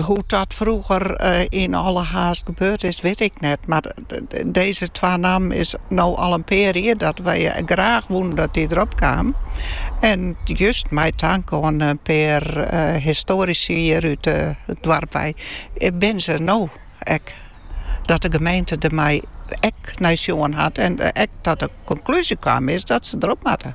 Hoe't dat frûger yn alle haast gebeurd is, wit ik net, mar dizze twa nammen is no al in pear jier dat wy graach woenen dat dy derop kaam. En just mei tank oan in pear histoarisy hjir út it doarp wei binne se der no ek. Dat de gemeente der mei ek nei sjoen hat en ek ta de konklúzje kaam is dat se derop moatte.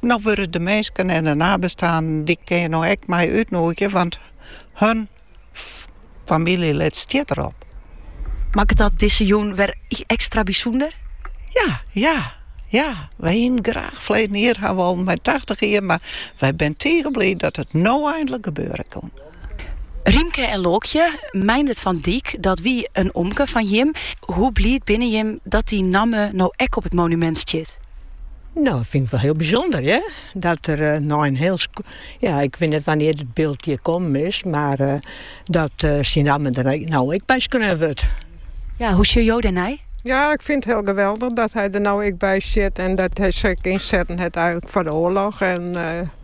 No wurde de minsken en de nabestaanden dy kin jim no ek mei útnûgje, want hun famyljelid stiet derop. Makket dat dizze jûn wer ekstra bysûnder? Ja, ja, ja. Wy hienen graach ferleden jier ha wollen mei tachtich jier, mar wy binne tige bliid dat it no eindlik gebeure kin. Rymke en Lookje, Meindert van Dijk, dat wie in omke fan jim. Hoe bliid binne jim dat dy namme no ek op it monumint stiet? No, dat fyn ik wol hiel bysûnder, hear. Dat der nei in hiel sk-, ja, ik wit net wannear't it byld hjir kommen is, mar dat syn namme der no ek by skreaun wurdt. Ja, hoe sjoch jo dêrnei? Ja, ik fyn it hiel geweldich dat hy der no ek by stiet en dat hy sich ek ynsetten hat foar de oarloch.